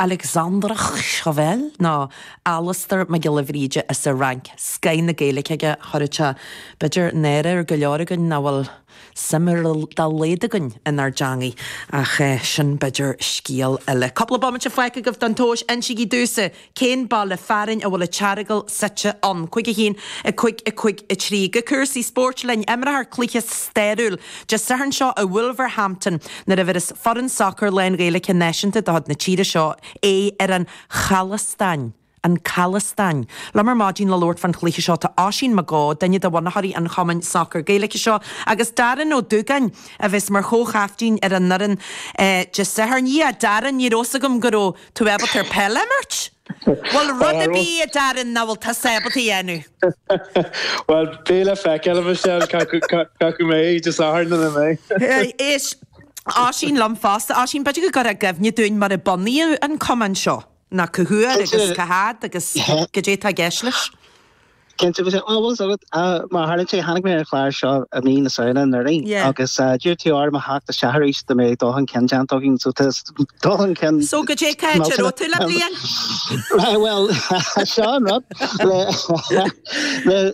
Alexandre Chauvel nó Alastar Mac Giolla Bhríde as an Fhrainc, scoth na Gaeilge aige, chuirfeadh sé, b'fhéidir náire ar go leor againn nach bhfuil suim ar dá laghad againn inár dteangaidh, ach sin b'fhéidir scéal eile. Cúpla bomaite fágtha agaibh don tomhas, insígí domhsa cén baile fearainn a bhfuil an tEaragail suite ann. Cúig a haon, a cúig, a cúig a trí. Go cúrsaí spóirt linn, imreofar cluiche stairiúil. Dé Sathairn seo i Wolverhampton nuair a bheireas foireann sacair lán-Ghaeilge Náisiúnta de chuid na tíre seo aghaidh ar an Chalastáin, An Calastáin. Liom ar maidin le labhairt fán chluiche seo tá Oisín Mac Eó, duine de bhunaitheoirí an chumainn sacair Gaeilge seo, agus Darren Ó Dúgáin a bheas mar chomhchaiftín ar an fhoireann Dé Sathairn. Yeah Darren, ní raibh fhios agam go raibh tú ábalta ar peil a imirt! Bhfuil rud ar bith a Darren nach bhfuil tusa ábalta a dhéanamh. Bhuel, beidh le feiceáil, a Mhichelle, cé acu mbeidh Dé Sathairn nó nach mbeidh. Is Oisín liom fosta. Oisín, b'fhéidir go gcuirfeá i gcuimhne dúinn mar a bunaíodh an Cumann seo, nó cá huair agus cá háit agus cad é tá i gceist leis. Cinnte, a Mhichelle, bhfuil a fhios agat, mar a tharlaíonn sé, tháinig mé ar an chlár seo i mí na Samhna anuraidh agus d'iarr tú orm a theacht isteach arís dá mbeadh dul chun cinn déanta againn so tá dul chun cinn. So go dtí cáit a raibh tú le bliain? Bhuel, seo an rud,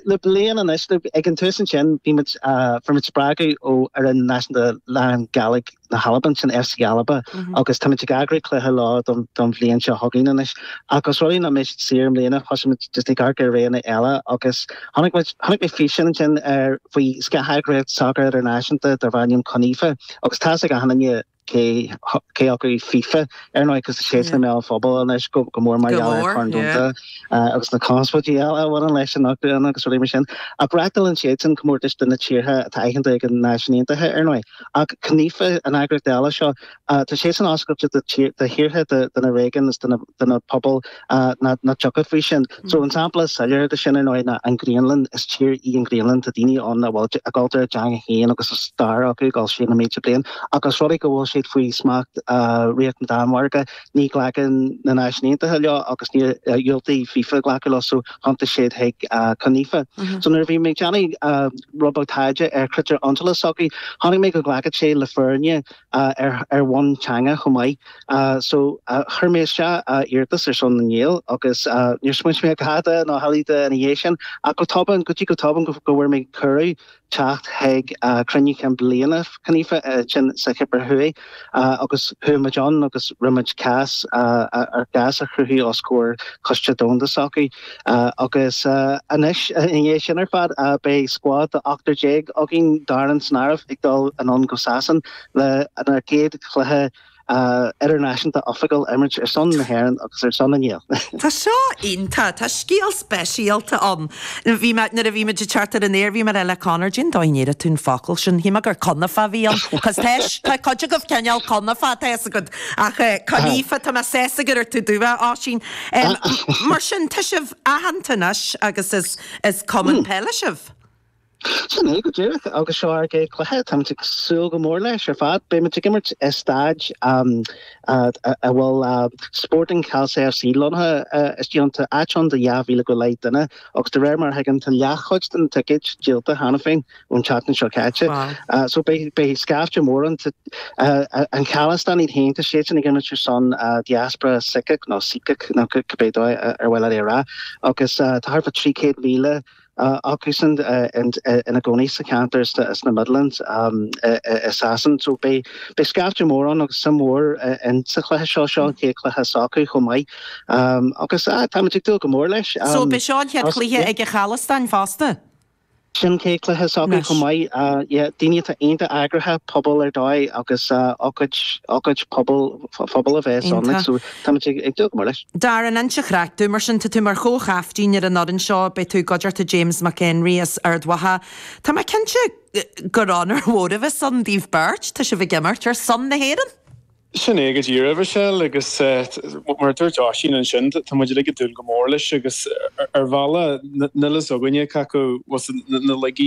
le bliain anois, ag an tús ansin bhí muid, fuair muid spreagadh ó fhoireann náisiúnta lán-Ghàidhlig, na hAlban ansin FC Alba agus táimid ag eagrú cluiche leo don bhliain seo chugainn anois ach os rud é ná mbeidh siad saor i mbliana thosaigh muid just ag amharc ar roghanna eile agus tháinig muid chonaic mé físeán ansin ar faoi scátheagraíocht sacair idirnáisiúnta darb ainm Conifa agus tá's ag achan nduine cé cé acu FIFA ar ndóigh cos tá siad i mbéal an phobail anois go go mór mar gheall ar Chorn Domhanda agus na conspóidí eile a bhaineann leis an eagraíocht agus rudaí mar sin ach reáchtálann siadsan comórtais do na tíortha atá aitheanta ag na Náisiúin Aontaithe ar ndóigh Ach Conifa an eagraíocht eile seo. Tá siadsan oscailte do thíortha, do na réigiúin is do na pobail nach dtiocfadh faoi sin. So an sampla is soiléire de sin, ar ndóigh, ná an Ghraonlainn. Is tír í an Ghraonlainn. Tá daoine ann a bhfuil a gcultúr, a dteanga féin agus a stair acu ag dul siar na mílte bliain. Ach os rud é go bhfuil siad faoi smacht Ríocht na Danmhairge, ní ghlacann na Náisiúin Aontaithe leo agus ní dhiúltaigh FIFA glacadh leo so thiontaigh siad chuig Conifa. So nuair a bhí mé ag déanamh rud beag taighde ar critéir iontrála s'acu, chonaic mé go nglacfadh siad le foirne ar bhonn teanga chomh maith. So chuir mé isteach iarratas ar son na nGael agus níor smaointigh mé ar dhada ná hamhlaidh de ina dhiaidh sin ach go tobann, go dtí go tobann go bhfuair mé cuireadh. teacht chuig cruinniú chinn bliana Conifa ansin sa Chipir Thuaidh agus chuaigh muid ann agus rinne muid cás, ár gcás a chruthú os comhair Coiste Domhanda s'acu agus anois i ndiaidh sin ar fad beidh scuad de ochtar déag againn Darren san áireamh ag dul anonn go Sasain lenár gcéad chluiche idirnáisiúnta Oifigiúil imirt ar son na hÉireann agus ar son a nGael. Tá seo iontach. Tá scéal speisialta ann. Bhí mé, nuair a bhí muid ag teacht ar an aer, bhí mé ag rá le Conor, Cén dóigh a ndéarfadh tú an focal sin? Shíl mé gur Conife a bhí ann. Cos tá, tá cuid agaibh cineál Conife, tá a fhios agat. Ach eh, Conife, tá mé, tá a fhios agat, ar a dúirt tú, a Oisín. Em, mar sin, tá sibh aitheanta anois agus is, is Cumann Peile sibh. Sin é go díreach agus seo ár gcéad cluiche. Táimid ag súil go mór leis ar fad. Beimid ag imirt i staid a bhfuil Sporting Khalsa FC lonnaithe istigh ann. Tá áit ann do 2,000 go leith duine agus de réir mar a thuigim tá leathchuid de na ticéid díolta cheana féin ón tseachtain seo caite. So beidh scaifte mór ann. Tá an Chalastáin iad féin, tá siadsan ag imirt ar son diaspora Saíceach nó Síceach nó cibé dóigh ar mhaith leat é a rá agus tá thart fá 300,000 acusan ina gcónaí sa cheantar sna Midlands i Sasain so beidh scaifte mór ann agus suim mhór sa chluiche seo. Seo an chéad chluiche s'acu chomh maith agus táimid ag dúil go mór leis. So an é seo an chéad chluiche ag an Chalastáin fosta? Sin an chéad chluiche s'acu chomh maith. Yeah, daoine atá iontach eagraithe, pobal ar dóigh agus ócáid phobail a bheas ann like so. Táimid ag dúil go mór leis. Go hiontach ar fad, mar sin, tá tú mar chomhchaiptín ar an fhoireann seo, beidh tú i gcuideachta James Mac Enrí as Ard Mhacha. Tá mé cinnte gur onóir mhór a bheas ann daoibh beirt, tá sibh ag imirt ar son na hÉireann! Sin é go díreach, a Mhichelle, agus mar a dúirt Oisín ansin, tá muid uilig ag dúil go mór leis, agus ar bhealach, níl a fhios againne cé acu muid na laige